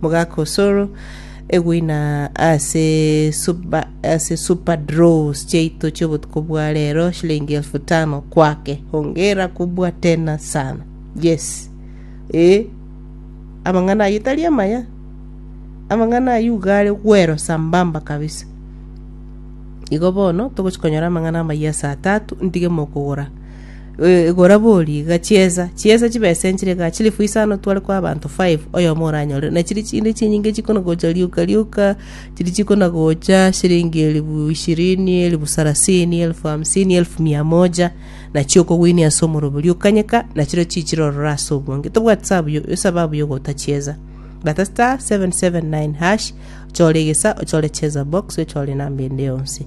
Mogaka osoro eguina ase supa ase supa draws chiaito chiobotuko bwa rero shilingi elfu tano kwake hongera kubwa tena sana yes eh amang'ana ayio tari amaya amang'ana ayio iga are gwero sambamba kabisa igo bono togochi konyora amang'ana amayia ase atatu ntige mokogora Eh, Igora bori iga chiesa, chiesa chibesa enchire iga, chilifu isano tware kwa abanto five, oyomo oranyore. Na chiri chinde chinyinge chikonagocha rioka rioka, chiri chikonagocha shilingi elifu ishirini, elifu sarasini, elifu hamsini, elifu mia moja, na chiokogwinia ase omorobe oria okanyeka, na chirio chichire ororo ase obwange. Tobwati sabu yo- esababu yogota chiesa. Bata star 779 hash, ochore egesa, ochore chesa box, ochore enamba ende yonsi.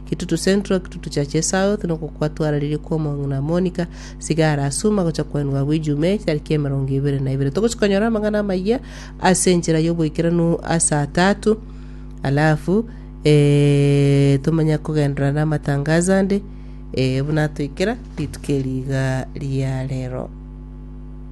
Kitutu Central, Kitutu Churches South, nokwo kwatwararirie kwa omong'ina Monica, sigara asuma gocha kwaenwa agwo Ijumaa etariki emerongo ebere na ibere. Togochi konyora amang'ana amayia ase enchera y'oboikeranu ase atatu, alafu eh, tomanya kogenderera n'amatangazo ande eh, buna atoikera rituko eri iga ria rero.